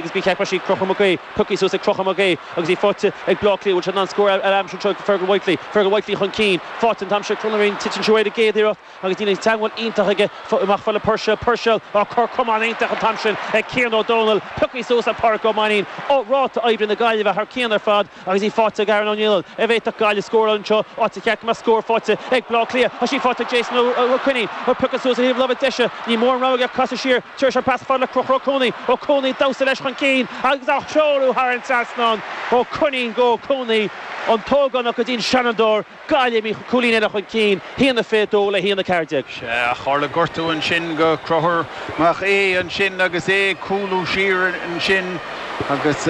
agus bí ceapair sí Crochúr Mac Aodha, piocthaí suas ag Crochúr Mac Aodha agus í faighte ag Bleá Cliath. Bhfuil sé in ann scór a aimsiú anseo ag Fergal Whitely. Fergal Whitely chun cinn, faighte an t-am seo ag Conal Ó Riain, titeann sí uaidh ar an gcéad iarracht agus níl an teagmháil iontach aige amach fad le Puirséil. Puirséil á cor camáin iontach an t-am sin ag Cian Ó Domhnaill, piocthaí suas ag Páraic Ó Mainnín. Ráta oibre na Gaillimhe thar cionn ar fad. Agus í faighte ag Aaron Ó Nialláin an bhféadfadh Gaillimh scóráil anseo áit ar cheart go mbeadh scór faighte ag Bleá Cliath tá sí faighte ag Jason Ó Coinín á piocadh suas ó thaobh láimhe deise níl mórán rogha aige ach casadh siar tar éis an pas fad le Crochúr Ó Cuanaigh Ó Cuanaigh ag damhsa leis chun cinn agus á threorú thar an trasnán Ó Coinín go Ó Cuanaigh an t-ógánach go dtí an seanadóir Gaillimhigh cúilín eile chun cinn, haon a fiche dó le haon a 14. Sea, ach tharla gortú ansin go Crochúr Mac Aodha ansin agus é ag cúlú siar ansin, agus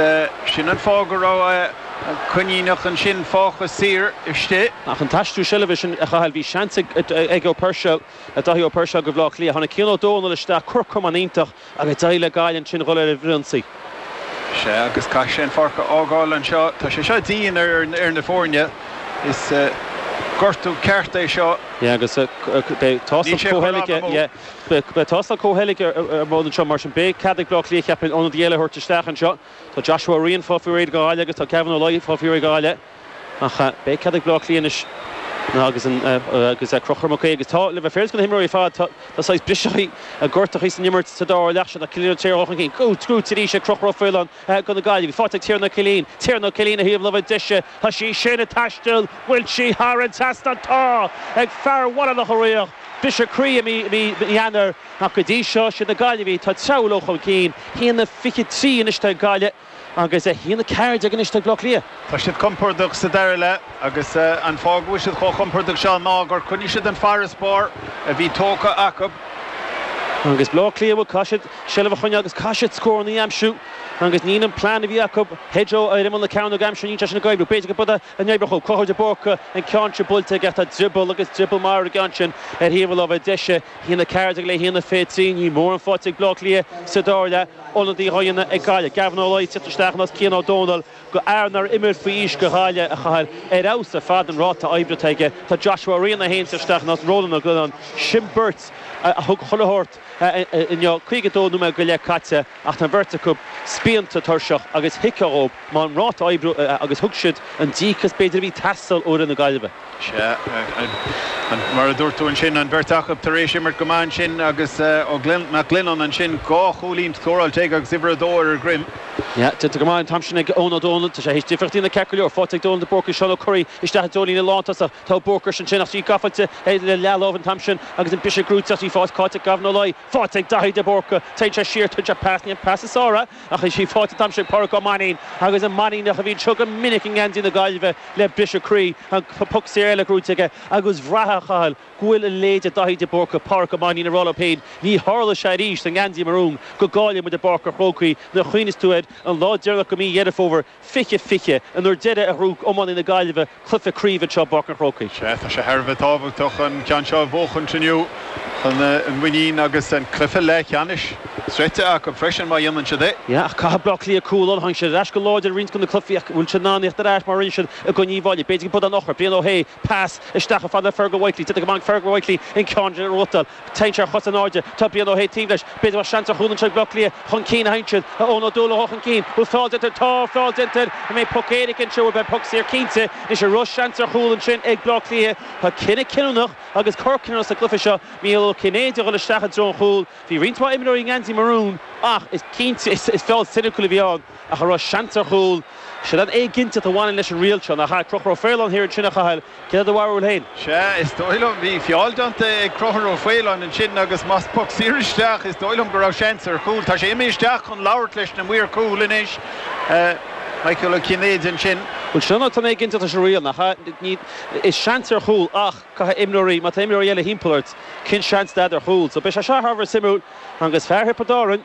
sin an fáth go raibh an Coiníneach ansin fágtha saor istigh. Ach an t-aistriú seilbhe sin a Chathail, bhí seans ag Ó Puirséil, Dáithí Ó Puirséil, go Bhleá Cliath. Tháinig Cian Ó Dónaill isteach, cor camáin iontach. Agus d'éirigh le Gaillimh ansin dhul ar an bhfrithionsaí. Sea, agus caithfidh sé an pháirc a fhágáil anseo. Tá sé seo dian ar fhir na foirne. Is gortú ceart é seo. Yeah, agus beidh, beidh tástáil chomhtholgtha ar bun anseo, mar sin beidh cead ag Bleá Cliath, cheapfainn, ionadaí eile a thabhairt isteach anseo. Tá Joshua Ó Riain ag fáil faoi réir ag Gaillimh agus tá Gavin Ó Laoi ag fáil faoi réir ag Gaillimh. Ach beidh cead ag Bleá Cliath anois agus agus Crochúr Mac Aodha agus tá le bheith féaráilte go na himreoirí ar fad, tá tá saghas briseadh a gortachaí san imirt sa dara leath seo ach tá Bleá Cliath ag teacht chun cinn, sciobtha arís ag Crochúr Ó Faoláin go na Gaillimhigh. Faighte ag Tiernan Ó Cillín, Tiernan Ó Cillín ó thaobh láimhe deise, tá sí sin ag taisteal, bhfuil sí thar an trasnán, tá, ag fear Bhaile Locha Riach, briseadh croí i mí Eanáir ach go dtí seo siad na Gaillimhigh atá ag treabhadh leo chun cinn, haon a fiche trí anois atá ag Gaillimh. Agus a haon a ceathair déag anois ag Bleá Cliath. Tá siad compordach sa dara leath agus an fáth go bhfuil siad chomh compordach seo ná gur choinnigh siad an farasbarr a bhí tógtha acu. Agus Bleá Cliath bhuel caithfidh siad seilbh a choinneáil agus caithfidh siad scóranna a aimsiú agus níl an plean a bhí acu Hedgo ar imeall na cearnóige a aimsiú níl sé sin ag oibriú. B'fhéidir go b'fhada a n-oibreodh. Ó, Conchúr de Búrca an ceann seo buailte aige, tá drioball agus drioball marbh aige ansin ar thaobh a láimhe deise, haon a ceathair déag le haon a fiche trí. Níl mórán faighte ag Bleá Cliath sa dara leath. Ionadaí á dhéanamh ag Gaillimh. Gavin Ó Laoi, ag tíocht isteach in áit Cian Ó Dónaill go fhear nár imir faoi aois go Ghaillimh, a Chathail, ar fheabhas ar fad an ráta oibre atá aige. Tá Joshua Ó Riain é féin ag teacht isteach in áit Rónán Ó Giolláin. Sin beirt a thug chuile shórt. inniu, 52 nóiméad go leith caite, ach tá an bheirt acu spíonta, tuirseach agus thuigfeá dhóibh mar an ráta oibre agus thug siad an díocas b'fhéidir a bhí ag teastáil ó fhir na Gaillimhe. Sea, mar a dúirt tú ansin, an bheirt acu tar éis imirt go maith ansin agus Ó Glinneán, Mac Glinneán ansin, dhá chúilín scóráilte aige agus uimhir a dó ar a dhroim. Sea, déanta go maith an t-am sin ag Eoin Ó Dónaill. Tá sé théis difríocht a dhéanamh ceart go leor. Faighte ag Dónal de Búrca, Seán Ó Curraoin isteach i dtreo líne lántosach. Tá Búrcaís ansin, ach í gaifeite le leath-láimh an t-am sin, agus an briseadh gnóite ag fás. Cáit ag gabh ina láí. Faighte ag Daithí de Búrca. Téann sé siar, tugann sé pas, ní hé an pas is fearr é, ach is í faighte an t-am sin ag Pádraic Ó Mainín, agus an Mainíneach a bhíonn seo go minic i ngeansaí na Gaillimhe le briseadh croí, an poc saor eile gnóite aige, agus bhraithfeá a Chathail go bhfuil a leithéid de Dhaithí de Búrca, Pádraic Ó Mainín, ag rá leo féin, ní tharlóidh sé arís sa ngeansaí marún go gcaillfidh muid i bPáirc a' Chrócaigh nuair a chuimhníos tú ar an lá deireanach de mhí Dheireadh Fómhair. 2020, an uair deiridh a ghnóthaigh iománaithe na Gaillimhe cluiche craoibhe anseo i bPáirc an Chrócaigh. Sea, tá sé thar a bheith tábhachtach an ceann seo a bhuachaint inniu chun an mhuinín agus an cluiche leathcheannais sroichte acu freisin má dhéanann siad é. Sea, ach caithfidh Bleá Cliath cúl orthu. Tháinig siad ar ais go láidir i roinnt de na cluichí ach an bhfuil siad in ann theacht ar ais mar a rinne siad i gcoinne Uíbh Fhailí? B'fhéidir go mbeidh an eochair, Brian Ó hAodha, pas isteach chomh fada le Fergal Whitely. D'fhéadfadh go mbainfeadh Fergal Whitely an ceann de ar ruathar. Téann sé ar chos in airde. Tá Brian Ó hAodha taobh leis. B'fhéidir bheadh seans ar chúl anseo ag Bleá Cliath chun cinn an t-am sin. Eoin Ó Dúlagha chun cinn. Bhfuil feall déanta air Tá feall déanta air An mbeidh poc éirice anseo bhuel beidh poc saor cinnte. Anois an raibh seans ar chúl ansin ag Bleá Cliath. Tá cinneadh cinniúnach agus cor cinniúnach sa gcluiche seo Micheál Ó Cinnéide a dhul isteach i dtreo an chúil. Bhí roinnt mhaith imreoirí i ngeansaí marún ach is cinnte is feall soiniciúil a bhí ann. ach a raibh seans ar chúl. Siod an éiginnteacht a bhaineann leis an riail seo, nach ea? Conchúr Ó Faoláin thiar ansin, a Chathail, céard é do bharúil féin? Sea, is dóigh liom. Bhí feall déanta ag Conchúr Ó Faoláin ansin agus más poc saor isteach, is dóigh liom go raibh seans ar chúl. Tá sé imithe isteach chun labhairt leis na maoir chúil anois, Micheál Ó Cinnéide ansin. Bhuel, sin an éiginnteacht leis an riail, nach ea? Ní, is seans ar chúl ach caithfidh imreoirí, má tá imreoirí eile thimpeall ort, cén seans atá agat ar chúl? So beidh sé seo thar a bheith suimiúil agus fear Thiobraid Árann,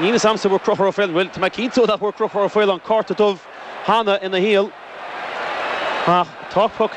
Níl fhios a'msa an bhfuair Conchúr Ó Faoláin, bhuel, tá mé cinnte nach bhfuair Conchúr Ó Faoláin cárta dubh cheana ina shaol, ach tá poc